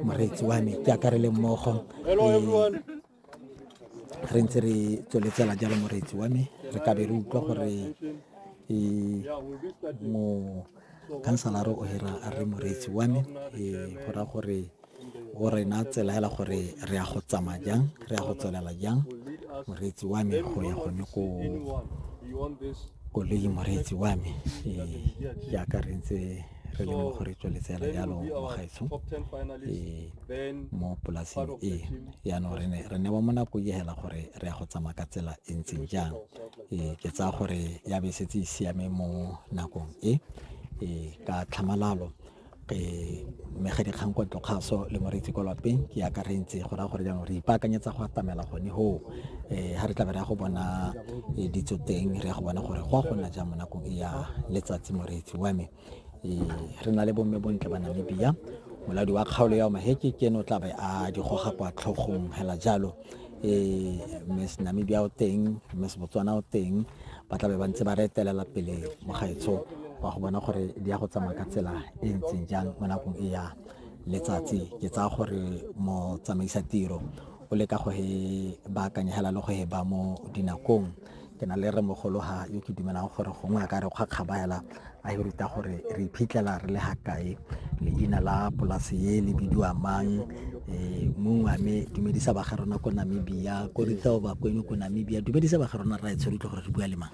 moreetsi wa me ke akarele mmogo re ntse re tsweletsela jalo moreetsi wa me re ka be re utlwa gore mo kansalare o hira a re moreetsi wa me go ra gore o rena tsela hela gore re ya go tsamaya jang re ya go tswelela jang moreetsi wa me go ya gone ko koloi moreetsi wa me jaaka re ntse re le mo go re tsweletsela jalo bagaetsho mo polaseng e yaanong re ne re newa mo nako e hela gore re ya go tsamaya ka tsela e ntseng jang e ke tsaya gore ya be setse e siame mo nakong e e ka tlhamalalo ke mega dikgang kwa tlokgaso le moreetsi kwa lapeng ke akarentse go raya gore jaanong re ipaakanyetsa go atamela gone hoo um ga re tla be re ya go bona e ditso teng re ya go bona gore go a gona jang mo nakong e ya letsatsi moreetsi wa me e, re na le bomme bontle ba namibia moladi wa kgaolo ya omaheke ke ene o tla be a di goga kwa tlhogong hela jalo um miss namibia o teng miss botswana o teng ba tla be ba ntse ba re etelela pele mo gaetsho wa go bona gore di ya go tsamaya ka tsela e ntseng jang mo nakong e ya letsatsi ke tsaya gore motsamaisa tiro o leka go he baakanya hela le go he ba mo dinakong ke na le re mogologa yo ke dumelang gore gongwe a ka re kgwa kgaba hela a e ruta gore re iphitlhela re le ga kae leina la polase ye le bidiwa mang eh, mongwe a me dumedisa ba ga rona ko namibia ko rithaobakwenyo ko namibia dumedisa ba ga rona ra e tshwere utlwe gore re bua le mang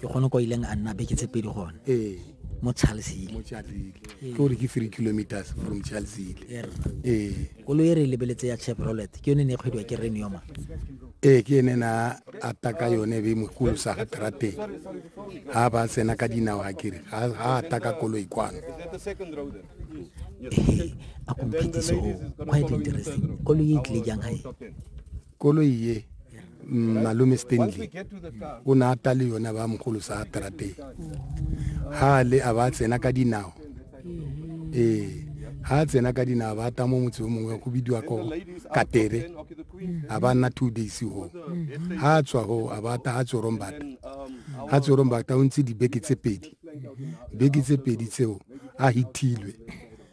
ke gone kwa ileng a nna beke tse pedi gone ee mo charlesile mo charlesile ee. ke gore ke three kilometers from charlesile er. ee koloi e re e lebeletse ya chevrolet ke yone ne e kgwediwa ke renioma ee ke ene na ata ka yone be mokolosa ga trateng ga ba tsena ka dinao ga kere ga ata ka koloi kwano ee a komphetiso quite interesting koloi e tlile jang gae koloi ye mm, malome stanley o ne a ta le yone ba mogolo sa trateng ha le a ba tsena ka dinao ee ha a tsena ka dinao ba ta mo motse o mongwe go bidiwa ko katere a ba nna two days go ha a tswa go a ba ta ha tsorombata ha tsorombata o ntse dibeke tse pedi beke tse pedi tseo a hitilwe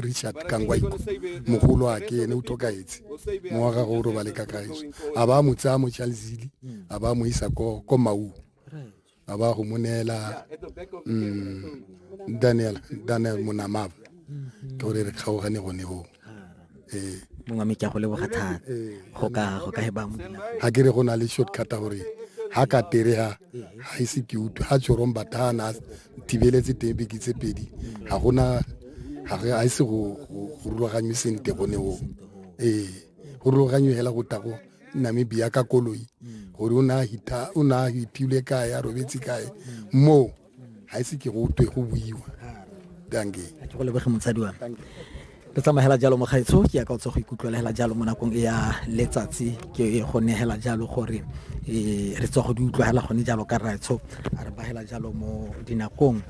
richard kangwaiko mogolo wa ke ene o tlhokaetse mo wa gago o robale ka gaeso a ba mo tsaya mo chalzili a ba mo isa ko ko mau a ba go mo neela mm, daniel daniel monamaba ke gore re kgaogane gone go ee mongwe me ke go leboga thata go ka go ka ba ga ke re go na le shortcut gore ha ka tere ha ha ise ke utlwe ha tshorong batana thibeletse teng beke tse pedi ga gona ga re a ise go rulaganywe sente gone go ee go rulaganywe fela go tago namibia ka koloi gore o ne a hitilwe kae a robetse kae moo ga ise ke go twe go buiwa danke go lebege motsadi wa re tsamagela jalo mokgaitsho ke ya ka o tsa go ikutlwelegela jalo mo nakong e ya letsatsi ke go negela jalo gore um re tswa go di utlwagela gone jalo ka raitsho a re bagela jalo mo dinakong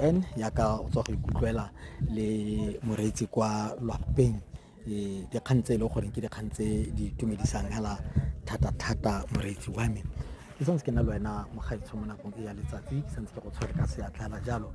um ya ka o tswa go ikutlwela le moreetsi kwa lwapeng um dikgang tse e leng gore ke dikgang tse di itumedisang hela thata-thata moreetsi wa me ke santse ke na le wena mokgaitsho mo nakong e ya letsatsi ke santse ke go tshwere ka seatla hela jalo